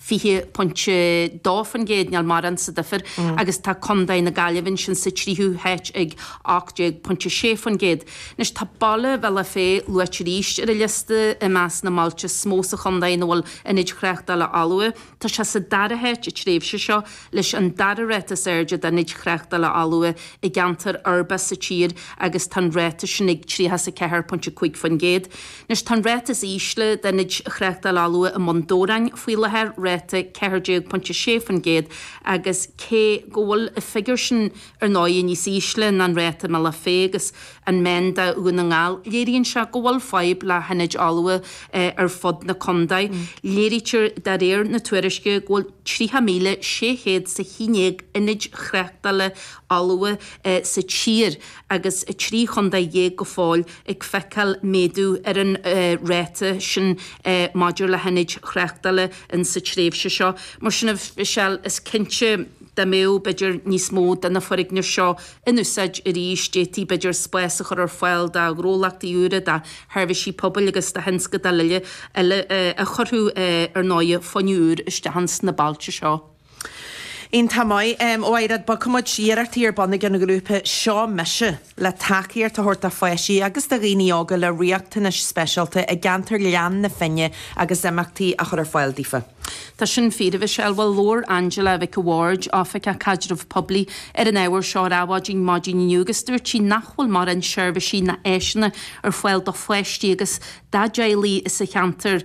20.2% nil morán sa duifear agus tá Condae na Gaillimhe ansin sa tríthú háit ag 18.6%. Anois tá Bealach Féich luaite arís ar an liosta i measc na mbailte is mó sa chondae ina bhfuil ionaid thráchtála fholmha. Tá sé sa dara háit an tréimhse seo leis an dara ráta is airde d'ionaid thráchtála fholmha i gceantar uirbeach sa tír agus tá an ráta sin ag 34.5%. Anois tá an ráta is ísle d'ionaid thráchtála fholmha i mBun Dobhráin faoi láthair, ráta 14.6%, agus cé go bhfuil an figiúr sin ar ndóigh níos ísle ná an ráta i mBealach Féich agus an meán do Dhún na nGall, léiríonn sé go bhfuil fadhb le hionaid fholmha ar fud na condae. Léirítear de réir na tuairisce go bhfuil 30,600 is a haon déag ionad tráchtála fholmha sa tír, agus 13 chontae go fóill ag feiceáil méadú ar an ráta sin maidir le hionaid thráchtála insa tréimhse seo. Mar sin de, Michelle, is cinnte dá mbeadh b'fhéidir níos mó de na foirgnimh seo in úsáid arís, d'fhéadfaí b'fhéidir spás a chur ar fáil do ghnólachtaí úra, do sheirbhísí pobail agus do thionscadail eile a chuirfeadh, ar ndóigh, fuinneamh úr isteach sna bailte seo. Iontach maith, ar aghaidh, bogfaidh muid iarrachtaí ar bun ag an ghrúpa Seo Mise le tacaíocht a thabhairt do pháistí agus do dhaoine óga le riachtanais speisialta i gceantar Ghleann na Finne agus imeachtaí a chur ar fáil daofa. Tá sin fíor, a Mhichelle. Bhuel, labhair Angela Mhic a' Bhaird, Oifigeach Caidrimh Poiblí, ar an ábhar seo ar Adhmhaidin maidin inniu agus dúirt sí nach bhfuil morán seirbhisí ná áiseanna ar fáil do pháistí agus dá dteaghlaigh sa cheantar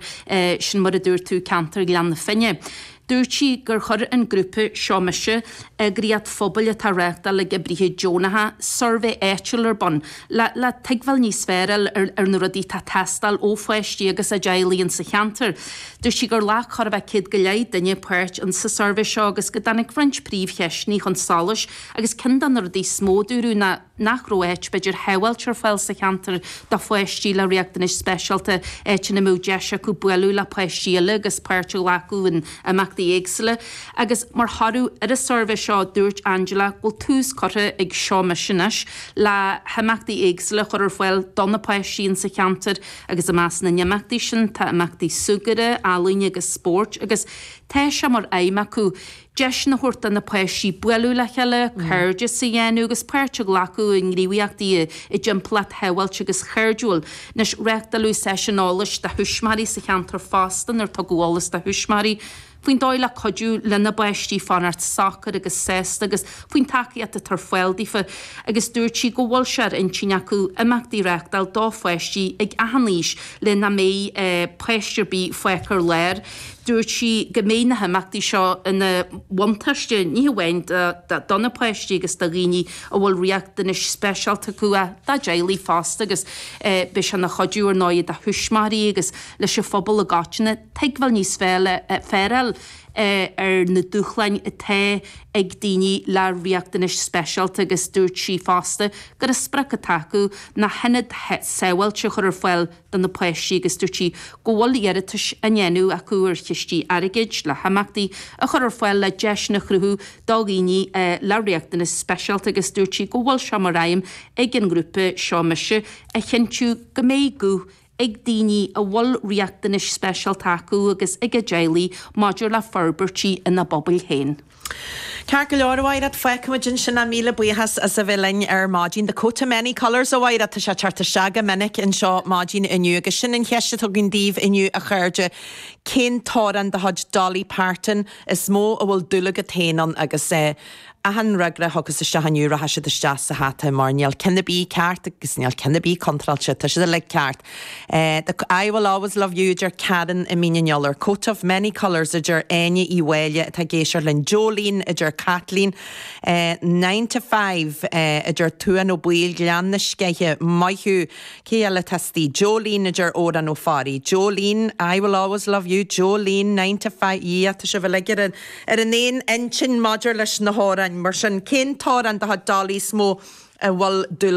sin mar a dúirt tú, ceantar Ghleann na Finne. Dúirt sí gur chuir an grúpa Seo Mise, eagraíocht phobail atá á reáchtáil ag oibrithe deonacha, suirbhé áitiúil ar bun le tuigbheáil níos fearr a fháil ar na rudaí atá ag teastáil ó pháistí agus a dteaghlaigh insa cheantar. Dúirt sí gur ghlac chóir a bheith céad go leith duine páirt insa suirbhé seo agus go dtáinig roinnt príomhcheisteanna chun solais agus ceann de na rudaí is mó a dúradh ná nach raibh áit, b'fhéidir, shábháilte ar fáil sa cheantar do pháistí le riachtanais speisialta, áit ina mbeadh deis acu bualadh le páistí eile agus páirt a ghlacadh in imeachtaí éagsúla. Agus mar thoradh ar an suirbhé seo, dúirt Angela go bhfuil tús curtha ag Seo Mise anois le himeachtaí éagsúla a chur ar fáil do na páistí insa cheantar agus i measc na n-imeachtaí sin tá imeachtaí súgartha, ealaíne agus spóirt agus tá sé mar aidhm acu deiseanna a thabhairt do na páistí bualadh le chéile, cairdeas a dhéanamh agus páirt a ghlacadh i ngníomhaíochtaí i dtimpeallacht shábháilte agus chairdiúil. Anois, reáchtáladh seisiúin eolais do thuismitheoirí sa cheantar fosta inar tugadh eolas do thuismitheoirí faoin dóigh le cuidiú lena bpáistí fanacht socair agus sásta agus faoin tacaíocht atá ar fáil daofa agus dúirt sí go bhfuil sé ar intinn acu imeachtaí a reáchtáil do pháistí ar achan aois le nach mbeidh páiste ar bith fágtha ar lár. Dúirt sí go mbeidh na himeachtaí seo ina mbuntáiste ní hamháin do na páistí agus do dhaoine a bhfuil riachtanais speisialta acu ach dá dteaghlaigh fosta agus beidh sé ina chuidiú ar ndóigh do thuismitheoirí agus leis an phobal i gcoitinne tuigbheáil níos fearr a fháil ar na dúshláin atá ag daoine le riachtanais speisialta agus dúirt sí fosta gur sprioc atá acu ná hionad sábháilte a chur ar fáil do na páistí agus dúirt sí go bhfuil iarratais á ndéanamh acu ar chistí airgid le himeachtaí a chur ar fáil le deiseanna a chruthú do dhaoine le riachtanais speisialta agus dúirt sí go bhfuil sé mar aidhm ag an ngrúpa seo mise a chinntiú go mbeidh guth ag daoine a bhfuil riachtanais speisialta acu agus ag a dteaghlaigh maidir le forbairtí ina bpobail féin. Ceart go leor, a Mhaighread, feicfimid ansin ach míle buíochas as a bheith linn ar maidin. The coat of many colours, a Mhaighread, tá sé teacht isteach go minic anseo maidin inniu agus sin an cheist atá againn daoibh inniu a chairde, cén t-amhrán de chuid Dolly Parton is mó a bhfuil dúil agat féin ann? Agus achan fhreagra a thiocfas isteach inniu rachaidh siad isteach sa hata mar níl cionn ar bith ceart agus níl cionn ar bith contráilte, tá siad uilig ceart. I will always love you, a deir Karen i Mín an Iolair. Coat of many colours, a deir Áine Uí Mháille atá ag éisteacht linn. Jolene, a deir Caitlín. Nine to five, a deir Tuán Ó Baoill. Gleann na Sceiche. Maith thú. Cé eile atá astoigh? Jolene, a deir Odhrán Ó Fearraigh. Jolene, I will always love you. Jolene, nine to five. Yeah, tá sibh uilig ar an aon intinn maidir leis na hamhráin. Mar sin, cén t-amhrán de chuid Dolly is mó a bhfuil dúil